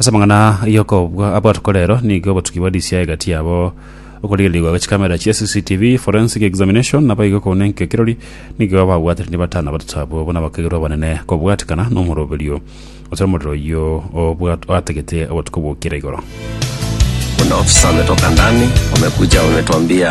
Ase amang'ana y'okobua abatuko rero nigo obotuki bwa DCI egati yabo okorigererigwa gwe chikamera chia CCTV, forensic examination, naboigo kouna enkio kirori nigo babwatire ni batano abatato abwo buna bakairwe abanene kobwatikana nomoroberio ase omorero oyio obwat- oatagete obotuko bw'okira igoro. Kuna ofisa wametoka ndani, wamekuja wametuambia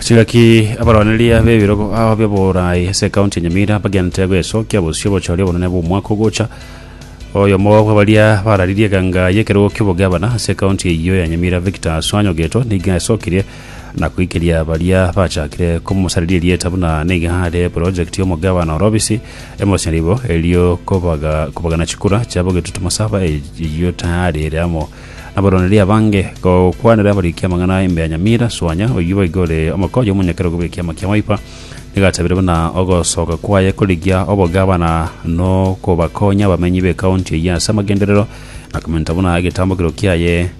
Chigaki abaroneria b'ebirogo ao by'oboraai ase ekaunti ya Nyamira bagente gwesokia bosio bochore obonene bw'omwaka ogocha. Oyomo bw'abaria bararirie eganga y'ekerogo ki'obogabana ase ekaunti eyio ya Nyamira Victor Aswany Ogeto nigo asokirie na koikeria baria bachakire komosariria erieta buna nigo are porojekiti y'omogabana orobisi emoseribo erio kobaga kobagana chikura chiabo getutu masaba eyio tayari ere amo Abaroneria abange, gokwanera abariki amang'ana aye mbea nyamira, Suanya, oyio boigo ore omokonyi omonyakera okobua ekiama kia maipa, nigatabire buna ogosoka kwaye korigia obogavana nokobakonya abamenyi b'ekaunti eyio ase amagenderero, na komenta buna egetambokero kiaye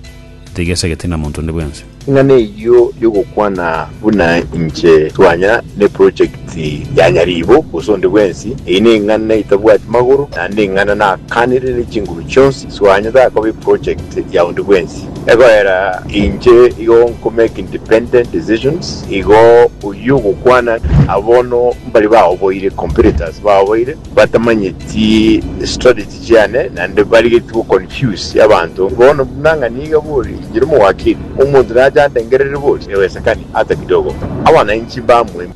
tigesegeti na monto onde bwensi. Ing'ana eyio y'ogokwana buna inche twanya neprojekti ya nyariibo gose onde bwensi, eyio neng'ana etabwati magoro, naende neng'ana nakanire ne chinguru chionsi, twanya takoba eprojekti ya onde bwensi. Egoera inche igo nkomake independent decisions, igo oyio ogokwana aba bono mbari baoboire, competitors baoboire, batamanyeti strategy. chiane naende barigetie go confuse abanto. Bono buna ng'a niga bori inche nomowakili, omonto nache andengerere bori ewesekani ata kidogo abananchi mbamue.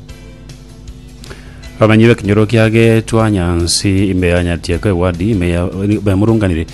Bamenyi b'ekenyoro kiagetwa Nyansi imbeanyatie ko ewadi ime ya bemurunganire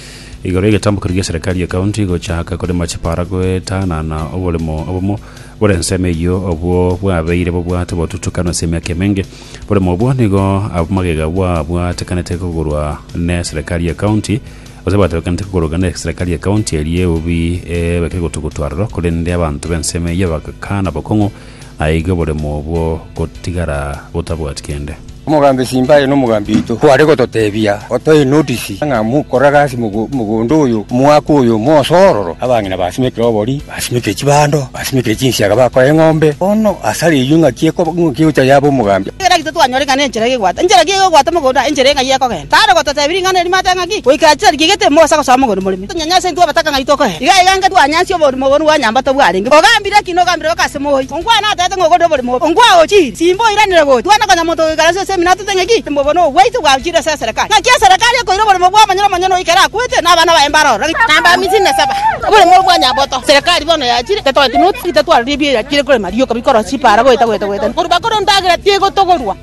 igoro y'egetambo keria gi'eserikari y'ekaunti gochaka korema chipara goetanana oboremo obomo bore ensemo eyio obwo bwabeire bobwate botutukana ase emiaka emenge. Boremo obwo nigo abamagega bwabwatekanete kogorwa ne Serekari ya County, gose bwatoekanete kogoroka ne Serekari ya County eria eubi ebekegotugutu aroro, korende abanto b'ensemo eyio bagakana bokong'u, naigo boremo obwo gotigara botabwati kende. Omogambi Simbaye nomogambi oito kware gototebia otoe notisi ng'a mokore gasi mogondo oyo, omwaka oyo, mosoororo abang'ina ba Simekirobori. Basimekire chibando, basimekire chinsiaga, bakoa eng'ombe, bono asare eyio ing'aki egocha yaba omogambi. Ekero agicha twanyora ing'ana enchera iga egwata, enchera ki iga egwata mogondo, enchera eng'ai ekogenda. Tare gototeebiri ing'ana eria mate ng'aki, goika achicha riria gete mogosa gosoa mogondo morimo. Tonyanyase intwe abataka ng'ai tokoe. Iga iga inga twanyansie oborimo bwo rwanyambato bwarenge. Ogambire ki? Nogambire goka ase mooi? Nkwane ateete ng'a okorire oborimo obo nkwagochirie, simba oiranere gochia kwane konya monto ogoikaransie ase eminwa atete ng'a eki timbe obobe nobwaito bwagochiria ase eserekari. Naki eserekari ekoira oborimo bw'omonyene omonyene oyo kera akwete, na abana baye mbare ororo. Namba amisini na saba. Oborimo obo bwa nyaboto. Eserekari bono yachire, tatoeti noti, titatwarire ebiya, yachire korema rioka bikorosia chipaara goeta goeta goeta. Korwa bakore endagera tigotogorwa.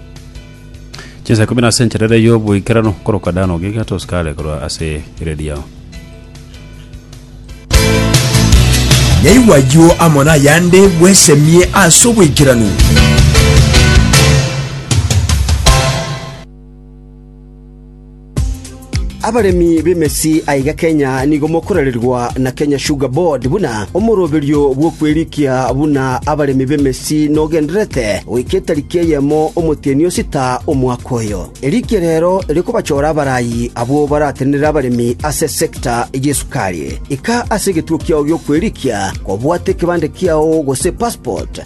Chinsa ikomi nase enchera ere y'oboikeranu koroka Dani ogiga tosikare korwa ase ere riao. Yaigwa ayio amo n'ayande, bwesemie ase oboikeranu. Abaremi b'emesi aiga Kenya nigo mokorererwa na Kenya Sugar Board buna omoroberio bw'okwerikia buna abaremi b'emesi nogendererete goika etariki eyemo omotienyi o sita omwaka oyo. Erikia rero rikobachora abarayi abwo baratenenere abaremi ase sector y'esukari. Ika ase egetuo kiao gi'okwerikia kobwate ekebande kiao gose passport,